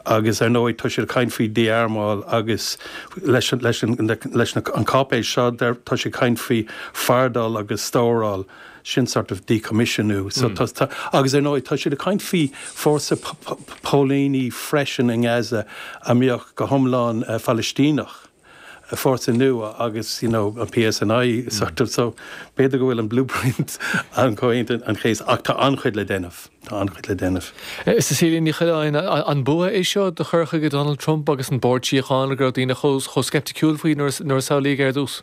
Agus ar ndóigh, tá siad ag caint faoi dhí-armáil agus leis an cháipéis seo tá siad ag caint faoi fardail agus stóráil, sin sort of díchoimisiniú. Agus ar ndóigh, tá siad ag caint faoi fhórsa póilíní freisin i nGaza a bheadh go hiomlán Palaistíneach. fórsa nua agus you know an PSNI sort of so b'fhéidir go bhfuil an blueprint i gComhaontú Aoine an Chéasta ach tá an-chuid le déanamh, tá an-chuid le déanamh. Cecilia Ní Choileáin, an bua é seo do chur chuige Donald Trump agus an Bord Síochána go raibh daoine chomh sceipticiúil faoi nuair a samhlaíodh é ar dtús?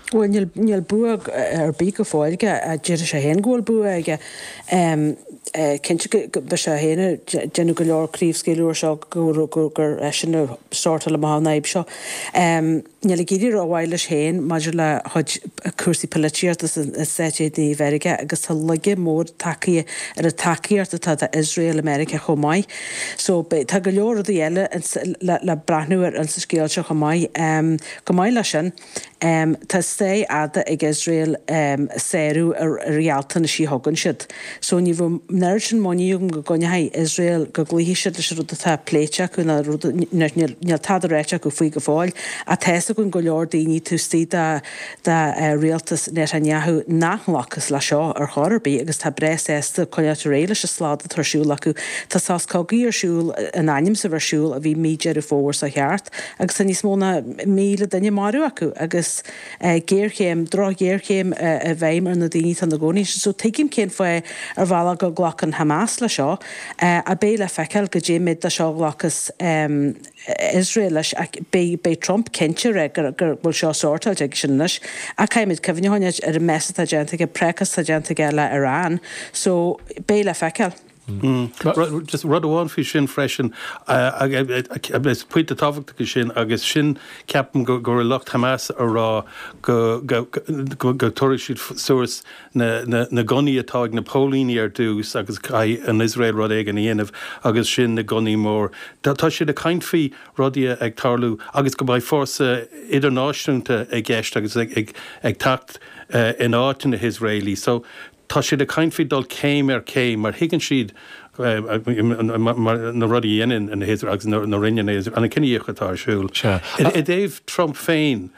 Bhuel, níl bua ar bith go fóill aige, déarfaidh sé féin go bhfuil bua aige. Cinnte go mbeidh sé féin ag déanamh go leor craobhscaoileadh air seo gur eisean a shórtáil amach an fhadhb seo. Níl ag éirí rómhaith leis féin maidir lena chuid cúrsaí poilitíochta i Stáit Aontaithe Mheiriceá agus tá laige mór tagtha ar an tacaíocht atá d'Iosrael i Meiriceá chomh maith. So, tá go leor rudaí eile le breathnú ar sa scéal seo chomh maith. Go maith leis sin. Tá stair fhada ag Iosrael ag sárú na ngealltanas a thugann siad so ní bheadh an oiread sin muinín agam go gcoinneoidh Iosrael, go gcloífidh siad leis an rud atá pléite acu níl tada ráite acu faoi go fóill ach tá's againn go leor daoine taobh istigh de rialtas Netanyahu nach nglacfas leis seo ar chor ar bith agus tá breá sásta coinneáil ar aghaidh leis an slad atá ar siúl acu. Tá sos cogaidh ar siúl, in ainm 's a bheith ar siúl, ó bhí mí Deireadh Fómhair seo caite, agus tá níos mó ná míle duine maraithe acu agus géarchéim, drochghéarchéim i bhfeidhm ar na daoine atá ina gcónaí ansin. So tuigim cén fáth ar bhealach go nglacann Hamas leis seo, ach beidh le feiceáil goidé méid de seo a ghlacas Iosrael leis, ach beidh Trump cinnte ag rá go bhfuil seo sortáilte aigesean anois, ach caithfimid cuimhneacháin ar an mess atá déanta aige, prácás atá déanta aige le Iran, so beidh le feiceáil. Just rud amháin faoi sin freisin, agus pointe tábhachtach é sin, agus sin ceapaim go raibh lucht Hamas ag rá go dtabharfaidh siad suas na gunnaí atá ag na póilíní ar dtús agus caithfidh an Iosrael rud éigin a dhéanamh agus ansin na gunnaí mór. Tá siad ag caint faoi rudaí ag tarlú agus go mbeidh fórsa idirnáisiúnta i gceist agus ag teacht in áit na hIosraelaí. So. Tá siad ag caint faoi dul céim ar chéim mar thuigeann siad na rudaí a dhéanann na hIosraelaigh agus a rinne na hIosraelaigh, an cinedhíothú atá ar siúl. I dtaobh Trump féin,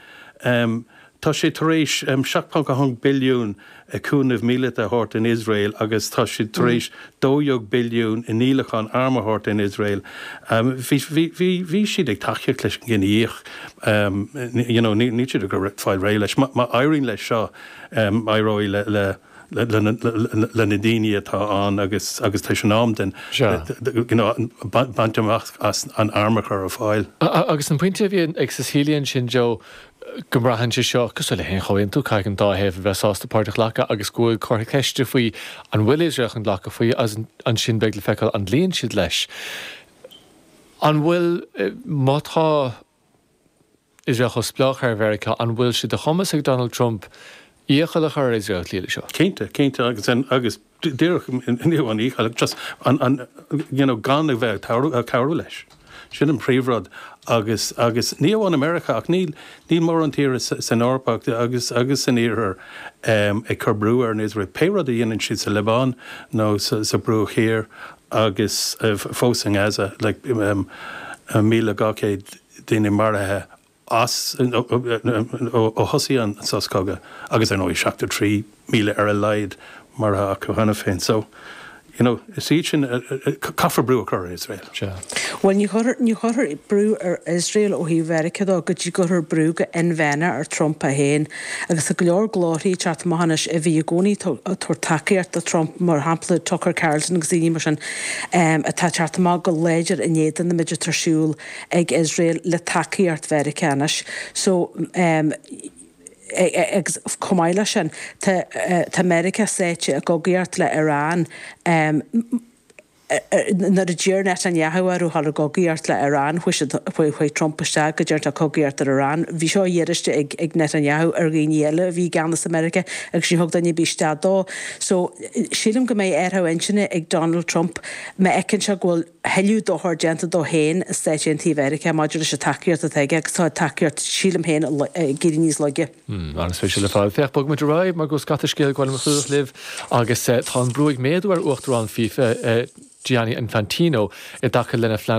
tá siad tar éis 7.1 billiún i cúnamh míleata a thabhairt don Iosrael agus tá siad tar éis 12 billiún i ndíolachán arm a thabhairt don Iosrael. Bhí siad ag tacaíocht leis an gcinedhíothú, níl siad ag fáil réidh leis. Má éiríonn leis seo, éireoidh le na daoine atá ann agus tar éis an am den baint amach as an arm a chur ar fáil. Agus an pointe a bhí ag Cecilia ansin, Joe, go mbraitheann sé seo cosúil le haon chomhaontú, caithfidh an dá thaobh a bheith sásta páirt a ghlacadh agus go bhfuil comhartha ceiste faoi an bhfuil Iosrael chun glacadh faoi agus ansin beidh le feiceáil an gcloíonn siad leis. An bhfuil, má tá, Iosrael chomh spleách ar Mheiriceá, an bhfuil sé de chumas ag Donald Trump iachall a chur ar Iosrael cloí leis seo? Cinnte, cinnte agus agus díreach ní amháin iachall ach just an an you know gan a bheith ag cabhrú leis. Sin an príomhrud agus agus ní amháin i Meiriceá ach níl níl mórán tíre san Eoraip ach agus agus san Iarthar ag cur brú ar an Iosrael, pé rud a dhéanann siad sa Liobáin nó sa Bhruach Thiar Agus fós i nGaza, le míle dhá chéad daoine maraithe as, ó thosaigh an sos cogaidh agus ar ndóigh seachtó trí míle ar a laghad maraithe acu cheana féin. So, you know, is iad sin, caithfear brú a chur ar Iosrael. Bhuel, ní chuirfear brú ar Iosrael ó thaobh Mheiriceá dó go dtí go gcuirfear brú go inmheánach ar Trump é féin. Agus tá go leor glórthaí ag teacht amach anois a bhí i gcónaí ag tabhairt tacaíocht do Trump, mar shampla Tucker Carlson agus daoine mar sin, atá ag teacht amach go láidir in éadan an méid atá ar siúl ag Iosrael le tacaíocht Mheiriceá anois. So, agus chomh maith leis sin, tá Meiriceá sáite i gcogaíocht le Iran, nuair a d'iarr Netanyahu orthu dhul i gcogaíocht le Iran, chuaigh siad, chuaigh Trump isteach go dearfa cogaíocht ar Iran. Bhí seo iarraiste ag, ag Netanyahu ar dhaoine eile a bhí i gceannas i Meiriceá agus ní thug duine ar bith isteach dó. So, sílim go mbeidh athrú intinne ag Donald Trump má fheiceann sé go bhfuil tuilleadh dochar déanta dó féin i Stáit Aontaithe Mheiriceá maidir leis an tacaíocht atá aige agus tá tacaíocht, sílim féin, ag éirí níos laige. Hmm, an-spéisiúil ar fad. Féach, bogfaimid ar aghaidh mar go bhfuil scata scéal ag gabháil a chlúdach libh agus tá an brú ag méadú ar Uachtarán FIFA, Gianni Infantino, i dtaca lena phlean.